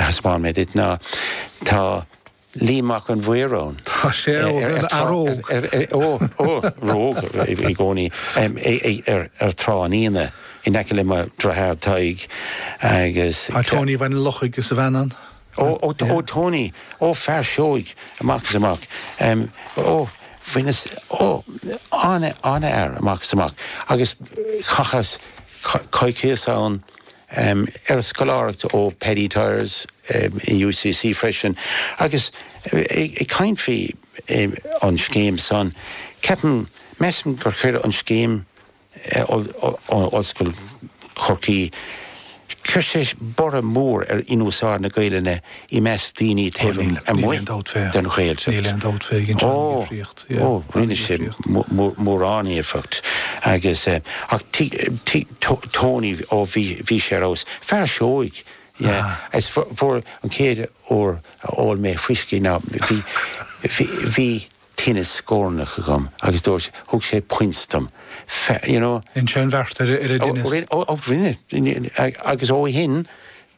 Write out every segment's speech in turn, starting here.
a thaispeáin mé duit, ná tá Liam Mac an Mhaoir ann. Tá sé ar an fhear óg. Ó, ó, róg i gcónaí ar Thrá an Fhíona in aice le mo dhritheár Tadhg agus... Tá Tony Bhaile an Lochaigh agus a bhean ann. Ó, ó, ó Tony, ó fear seoigh amach is amach. Ó, faoina, ó, an-fhear amach is amach agus chaitheas coicíos ann um ar scoláireacht ó Paddy Tyers um in UCC freisin agus ag ag caint faoi um an scéim san ceapaim measaim gur chuir an scéim um Ollscoil Chorcaí chuir sé borradh mór ar an úsáid na Gaelainne i measc daoine taobh amuigh den Ghaeltacht. Ó, ó, rinne sé mórán éifeacht agus, ach Tony, ó, bhí sé ar fheabhas. Fear seoigh, yeah, is fuair, an chéad uair a ól mé fuisce ná, bhí, bhí, bhí tinneas scornach agam agus dúirt, thug sé puins dom, you know. Rinne sé an bheart ar an dtinneas. Ó, rinne, agus ó shin,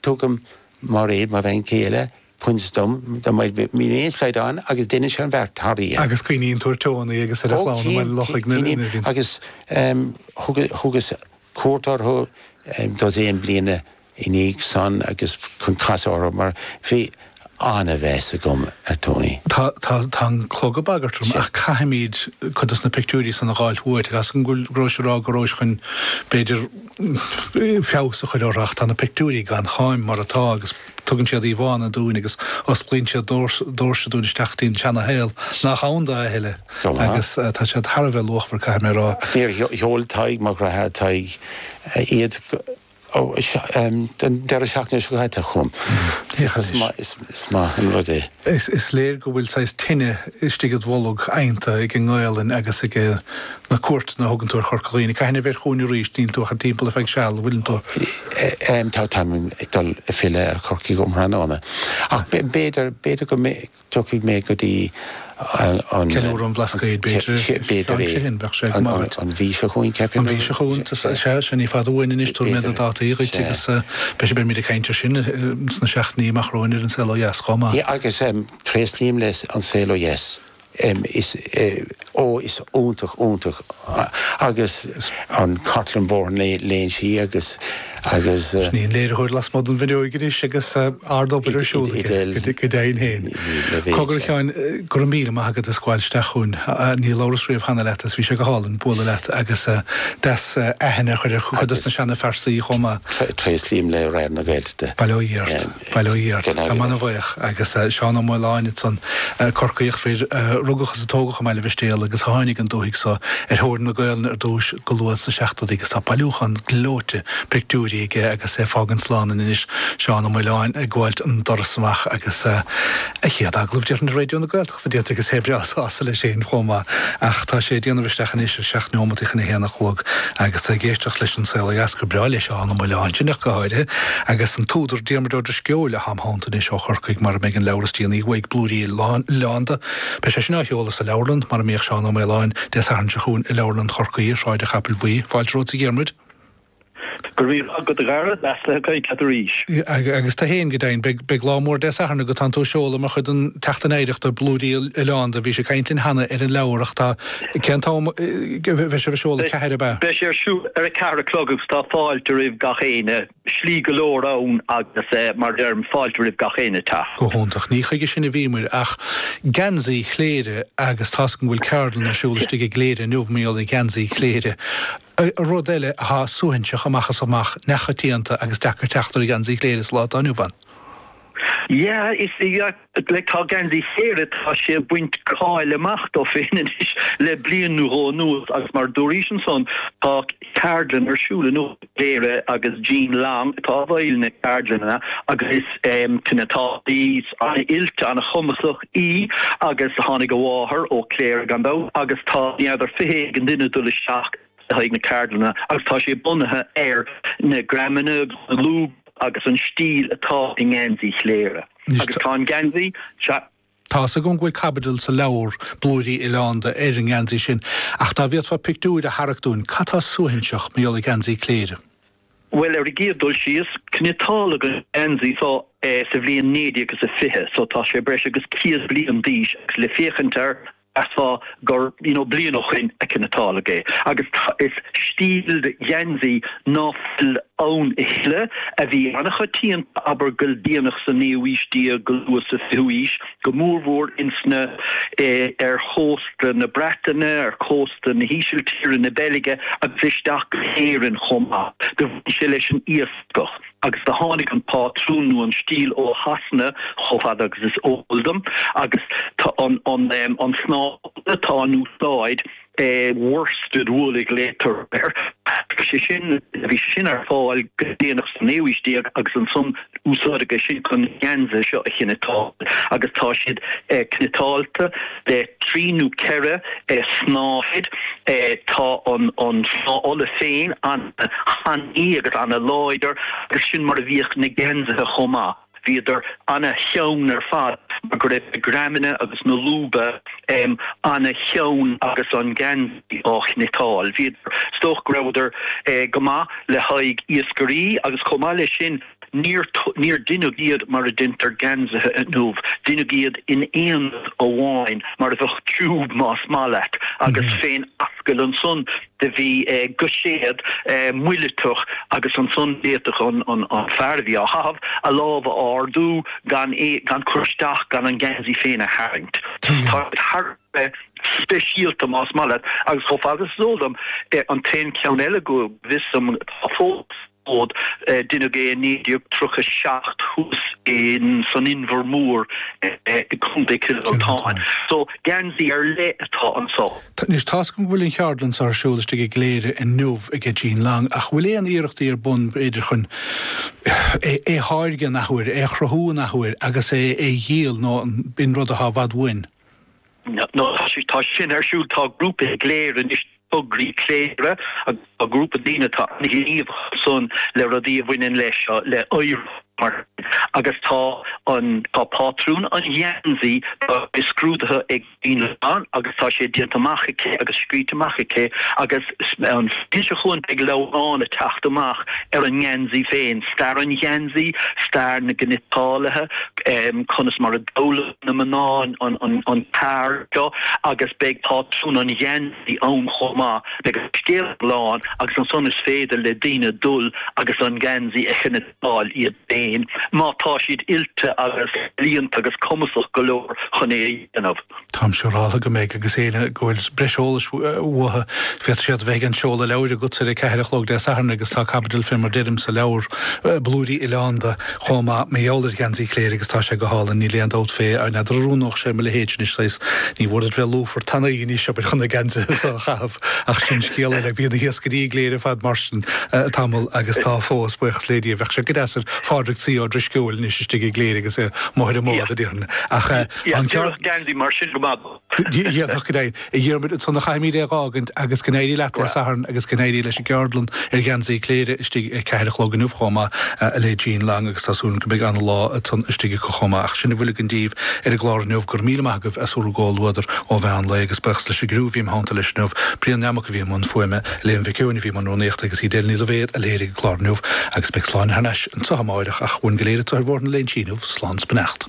tugaim. Mairéad, Mo bhean chéile, puins dom, dá mbeadh, má bhíonn aon slaghdán agus deineann sé an bheart thar oíche. Agus cuimhníonn tú ar Tony agus ar an chlann i mBaile an Lochaigh, na daoine. Ó, agus thugas cuairt orthu dosaen bliana i ndiaidh san agus chun casadh orthu mar bhí an-mheas agam ar Tony. Tá an clog ag bagairt orm ach caithfimid cuid dos na pictiúirí san a dh'fháilt uait agus go rabhais ag rá go rabhais chun, b'fhéidir, feabhas a chur orthu ach tá na pictiúirí gan cháim mar atá agus tugann siad íomhánna dúinn agus osclaíonn siad doirse dúinn isteach dtí'n tseana-shaol nach ann do a thuilleadh agus tá siad thar a bheith luachmhar caithfidh mé a rá. Níor sheol Tadhg Mac Graith, Tadhg, iad an deireadh seachtaine seo caite chugam. Is maith an rud é. Is léir go bhfuil saghas tine istigh id bholg adhanta ag an nGaolainn agus ag na cuairteanna a thugann tú ar Chorca Dhuibhne. Cathain a bheir chugainn arís, níl tú ach an timpeall ar feadh seal, an bhfuileann tú? Em, tá, táim ag dul ag filleadh ar Chorcaigh um thráthnóna. Ach b'fhéidir, b'fhéidir go dtiocfaidh mé go dtí an, Ceiliúradh an Bhlascaoid, b'fhéidir? B'fhéidir é. An mhí seo chugainn, ceapaim. An mhí seo chugainn, sea, sea, sea, ní fada uainn anois, tabharfaidh mé na dátaí dhuit agus, eh, b'fhéidir beimid ag caint air sin sna seachtainí amach romhainn ar An Saol Ó Dheas chomh maith. Yeah, agus, em, tréaslaím le An Saol Ó Dheas. em is eh oh is iontach iontach agus an Cartlann Bhóthar na Léinsí agus agus eh. Sin é an léiritheoir lasmuigh den bhfuinneoig anois agus eh ard obair ar siúl aige, go dei go deimhin féin. Cogar a Sheáin, eh go raibh míle maith agat as gabháil isteach chugainn. Ah níor labhras riamh cheana leat agus bhí sé go hálainn bualadh leat agus eh deas eh aithne a chur ar chuid dos na seana phearsaí chomh maith. Tréaslaím le Raidió na Gaeltachta. Bail ó Dhia ort. Baile Ó Dheirc, tá mé ana-bhuíoch agus Seán Ó Maoláin ansan, Corcaíoch, fear a rugadh is a tógadh i mBaile Mhistéala agus a tháinig an dúthaigh so ar thóir na Gaolainne ar dtúis go luath sna seachtóidí agus tá bailiúchán gleoite pictiúirí aige agus é fágaint slán linn anois, Seán Ó Maoláin ag gabháilt an doras amach agus a chéad agallamh, déarfainn, ar Raidió na. Is déarfainn go bhfuil sé breá sásta leis fhéin chomh maith, ach tá sé ag déanamh isteach anois ar sheacht neomataí chun a haon a chlog agus tá ag éisteacht leis An Saol Ó Dheas, Dara breá leis ann, an Maoileánach go háirithe, agus an t-údar Diarmuid Ó Drisceoil atá im theannta anois ó Chorcaigh mar a mbeidh an leabhar is déanaí uaidh, Blúirí Oileánda, beidh sé sin á sheoladh sa leabharlann, mar a mbíodh Seán Ó Maoláin, Dé Sathairn seo chugainn i Leabharlann Chorcaí i Sráid an Chapaill Bhuí. Fáilte romhat a Dhiarmuid. Go raibh maith agat, a Dhara, is deas caint leat arís. Agus tu fhéin, go deimhin. Beidh lá mór Dé Sathairn agat, tánn tú ag seoladh mar chuid den tSeachtain Oidhreachta, Blúirí Oileánda. Bhís ag caint linn cheana ar an leabhar ach tá. cén t-am a bheidh sé á sheoladh? 4, ab ea? Beidh sé ar siúl ar a ceathair a chlog agus tá fáilte roimh gach éinne. slí go leor ann agus mar a deirim, fáilte roimh gach éinne teacht. Go hiontach. Ní chuige sin a bhíomair ach geansaí Chléire agus toisc go bhfuil ceardlann ar siúl istigh i gCléire inniu, i bhfeighil geansaí Chléire. Rud eile athá suaithinseach amach is amach, neamhchoitianta agus deacair teacht ar gheansaí Chléire sa lá atá inniu ann. Yeah, eh tá geansaí Chléire tá sé ag baint cáil amach dó féin anois le bliain nó dhó anuas agus mar dúraís ansan tá ceardlann ar siúl inniu i gCléire agus Jean Long atá i bhfeighil na ceardlainne agus is, eh, cniotálaí ana-oilte, ana-chumasach. í agus tháinig a máthair ó Cléire gan dabht agus tá naonúr, fiche éigin duine ag dul isteach le haghaidh na ceardlainne agus tá sé bunaithe ar na greamanna agus na lúba agus an stíl atá i ngeansaí Chléire agus tá an geansaí seo Tá a fhios agam go bhfuil caibidil sa leabhar, Blúirí Oileánda, ar an ngeansaí sin, ach dá bhféadfá pictiúir a tharrac dúinn, cad tá suaithinseach mar gheall ar gheansaí Cléire? Bhuel, ar an gcéad dul síos, cniotáladh an geansaí seo sa bhliain naoi déag is a fiche, so tá sé breis agus céad bliain d'aois agus le féachaint air, mheasfá gur, you know, bliain ó shin a cniotáladh é. Agus is stíl de gheansaí ná fuil ann a thuilleadh, a bhí an-choitianta, abair, go déanach sa naoú haois déag go luath sa fichiú haois. go mórmhór insna, ar chósta na Breataine, ar chósta na hÍsiltíre, na Beilge agus isteach go hÉirinn chomh maith. Do bhain sé leis an iascach agus do tháinig an pátrún nó an stíl ó Shasana chomh fada agus is eol dom agus tá an snáth atá in úsáid, eh worsted wool a ghlaoitear air. Bhí sé sin bhí sé sin ar fáil go déanach sa naoú haois déag agus ansan úsáideadh é sin chun na geansaithe seo a chniotáil agus tá siad cniotáilte le trí nó ceithre snáthaid. Tá an an snáth olla féin an-tanaí agus an-láidir agus sin mar a bhíodh na geansaithe chomh maith. Bhíodar an-theann ar fad mar go raibh na greamanna agus na lúba an-theann agus an geansaí á chniotáil. Bhíodar, is dócha go rabhadar go maith le haghaidh iascairí agus chomh maith leis sin níor, níor deineadh iad mar a deintear geansaithe inniu, deineadh iad in aonad amháin mar a bheadh tiúb más maith leat agus fén ascaill ansan. Do bhí guiséad muileatach agus ansan d'fhéadfadh an fear a bhí á chaitheamh a lámh a ardú gan cur isteach gan an geansaí féin a tharraingt. Tá siad thar a bheith speisialta más maith leat agus chomh fada is is eol dom, an t-aon cheann eile go bhfios dom atá fós. fód. Deineadh é i 1937 thuas san Inbhear Mór i gContae Chill Mhantáin. So, geansaí ar leith atá anseo. Anois, tá a fhios againn go bhfuil an cheardlann so ar siúl istigh i gCléire inniu aige Jean Long, ach bhfuil aon iarrachtaí ar bun, b'fhéidir, chun é a tháirgeadh in athuair, é a chruthú in athuair agus é a dhíol nó an b'in rud atá i bhfad uainn? Nó tá sin ar siúl, tá grúpa i gCléire anois, Tograí Cléire, agus tá grúpa daoine atá an-ghníomhach ansan le rudaí a bhaineann le seo, le oidhreacht mar sin. Agus tá an, tá pátrún an gheansaí, tá sé scrúdaithe ag Jean agus tá sé déanta amach aici agus scríte amach aici agus an mhí seo chugainn beidh leabhrán a' teacht amach ar an ngeansaí féin, stair an gheansaí, stair na gcniotálaithe, conas mar a d'fhoghlaim. na mná an cheard seo agus beidh pátrún an gheansaí ann chomh maith. Beidh an scéal iomlán agus ansan is féidir le daoine dul agus an geansaí a chniotáil iad féin, má tá siad oilte agus ealaíonta agus cumasach go leor chun é a dhéanamh. Táim siúráltha go mbeidh agus éinne go bhfuil breis eolais uathu féadfaidh siad bheith ag an seoladh leabhair agatsa ar a ceathair a chlog Dé Sathairn agus tá caibidil fé mar deirim sa leabhar, Blúirí Oileánda, chomh maith, mar gheall ar gheansaí Chléire agus tá sé go hálainn, níl aon dabht fé, ach n'fheadar an oiriúnódh sé mo leithéidse anois, saghas, níor mhór duit bheith lúfar tanaí anois, abair, chun na geansaithe so a chaitheamh, ach sin scéal eile. Bhíodh na hiascairí i gCléire ar fad mar sin, tamall, agus tá fós, buíochas le Dia. Bheadh sé go deas ar Phádraig C. Ó Drisceoil anois istigh i gCléire agus é amuigh ar an mbád, a déarfainn, ach tá an ceart. D'oirfeadh geansaí mar sin go maith dó. Dhéanfadh, go deimhin, a Dhiarmuid, ansan a chaithfimíd é dh'fhágaint, agus go n-éirí leat Dé Sathairn, agus go n-éirí leis an gceardlann ar gheansaí Cléire istigh a ceathair a chlog inniu chomh maith, le Jean Long, agus tá súil agam go mbeidh an-lá ansan istigh acu chomh maith. Ach sin a bhfuil againn daoibh ar an gclár inniu, gura míle maith agaibh as bhur gcomhluadar ó mheán lae, agus buíochas leis an gcriú a bhí im theannta leis inniu, Brian Nammock a bhí i mbun fuaime, Elaine Mhic Eoin a bhí i mbun rúnaíochta, agus Edel Ní Loibhéad a léirigh an clár inniu, agus beidh Sláine thar n-ais anso amárach, ach uainn go léir anso ar Bhóthar na Léinsí inniu, slán 's beannacht.